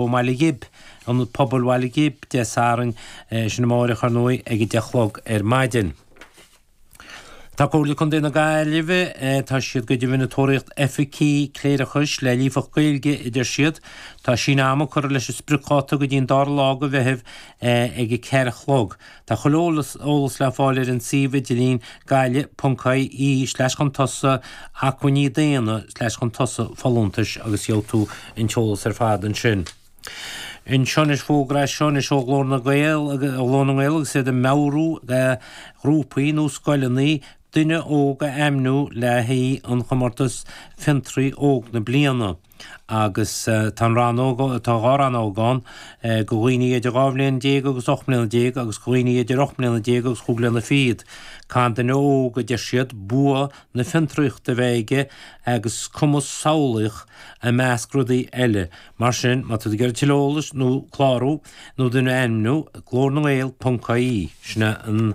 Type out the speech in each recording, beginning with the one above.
I mBaile Ghib, Ionad Pobail Bhaile Ghib, Dé Sathairn, é sin amárach, ar ndóigh, ag a deich a chlog ar maidin. Tá Comhairle Contae na Gaillimhe, tá siad go deimhin ag tóraíocht oifigigh cléireachais le líofacht Gaeilge, a deir siad. Tá síneadh ama curtha leis an spriocdháta go dtí an dara lá de Mheitheamh ag a ceathair a chlog. Tá chuile eolas le fáil ar an suíomh idirlín gaillimh.ie slash chun tosa acmhainní daonna slash chun tosa folúntais agus gheobhaidh tú an t-eolas ar fad ansin. Anseo anois fógra anseo anois ó Ghlór na nGael ó Ghlór na nGael agus iad ag meabhrú do ghrúpaí nó scoileanna duine óg a ainmniú le haghaidh an chomórtas Fiontraí Óg na Bliana. Agus tá an rannóg, tá dhá rannóg ann, do dhaoine idir dhá bhliain déag agus ocht mbliana déag agus do dhaoine idir ocht mbliana déag agus chúig bliana fichead. Caithfidh duine óg, a deir siad, bua na fiontraíochta a bheith aige agus cumas samhlaíoch, i measc rudaí eile. Mar sin, má tá tú ag iarraidh tuilleadh eolais nó clárú nó duine a ainmniú, glórnangael.ie, sin an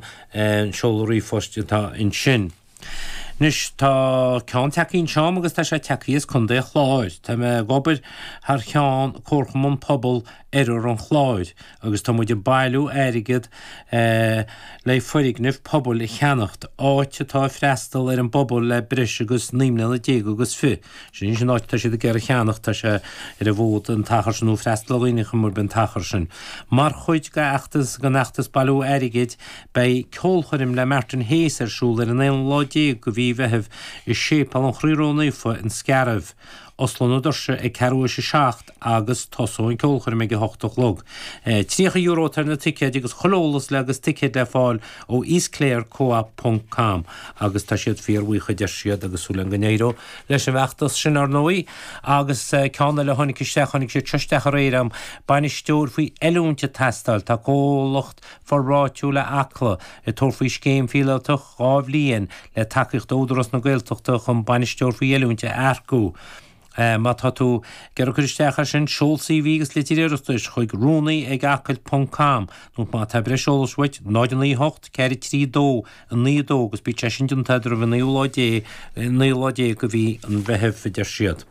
seoladh ríomhphoist atá ansin. Anois tá ceann tagthaí anseo agam agus tá sé tagthaí as Contae an Chláir. Tá mé ag obair thar cheann Comharchumann Pobail Oirthear an Chláir agus tá muid ag bailiú airgead le foirgneamh pobail a cheannacht, áit atá ag freastal ar an bpobal le breis agus naoi mbliana déag agus fiche. Sin an áit atá siad ag iarraidh a cheannacht, tá sé ar an bhfód an t-achar sin nó freastal ar dhaoine ar chuma ar bith an t-achar sin. Mar chuid den fheachtas bailiú airgid, Beidh ceolchoirm le Martin Hayes ar siúl ar an aonú lá déag de mhí Mheithimh i Séipéal an Chroí Ró-Naofa an Scairbh. Osclóidh na doirse ag ceathrú tar éis a seacht agus tosóidh an ceolchoirm ag a hocht a chlog. €30 atá ar na ticéid agus chuile eolas le agus ticéid le fáil ó eastclarecoop ponc com agus tá siad fíorbhuíoch a deir siad agus súil againn go n-éireoidh leis an bhfeachtas sin ar ndóigh agus ceann eile a tháinig isteach, tháinig siad seo isteach aréir, bainisteoir faoi oiliúint ag teastáil, tá comhlacht. Forbartha Áitiúil Acla ag tabhairt faoi scéim phíolótach dhá bhliain le tacaíocht ó Údarás na Gaeltachta chun Bainisteoir faoi Oiliúint a earcú. Má tá tú ag iarraidh cur isteach air sin, seol CV agus litir iarratais chuig, Rúnaí ag acaill ponc com, nó má tá breis eolais uait, 0 9 8 4 3 2 9 2 agus beidh sé sin déanta agat roimh an 9ú lá déag de mhí an Mheithimh, a deir siad.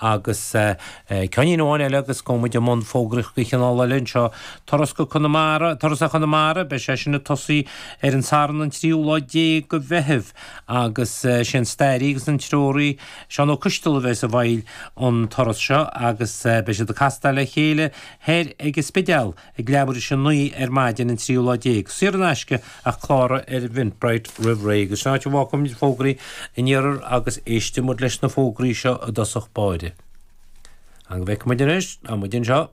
Agus ceannín amháin eile agus go muid i mbun fógraíocht de chineál eile anseo, turas go Conamara, turas ar Chonamara, beidh sé sin ag tosú ar an Satharn an tríú lá déag de Mheitheamh agus is é an stairí agus an treoraí Seán Ó Coistealbha a bheidh i bhfeighil an turas seo agus beidh siad ag castáil le chéile thoir ag an Spidéal. Ag leathuair is a naoi ar maidin an tríú lá déag, saor in aisce ach cláraigh ar Eventbrite roimh ré agus sin áit a bhfágfaimid fógraí an iarthair agus éistfimid leis na fógraí seo i dtosach báire. Nó go bhfeicfimid anois, tá muid anseo!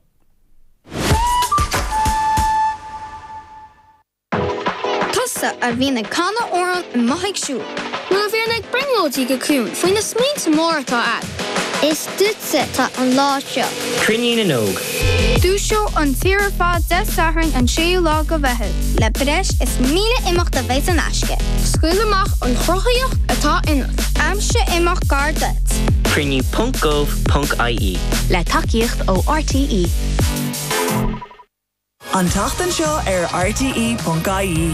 Tusa a bhíonn ag canadh amhrán i mo theach siúil. Nuair a bhíonn ag brionglóidí go ciúin faoi na smaointe móra atá a'd. Is duitse atá an lá seo. Cruinniú na nÓg. Dúiseoidh an tír ar fad Dé Sathairn an 6ú lá de Mheitheamh. Le breis is 1000 imeacht a bheas in aisce. Scaoil amach an chruthaíocht atá ionat. Aimsigh imeacht gar duit. Cruinniú ponc gov ponc ie. Le tacaíocht ó RTÉ. An tseachtain seo ar rte.ie.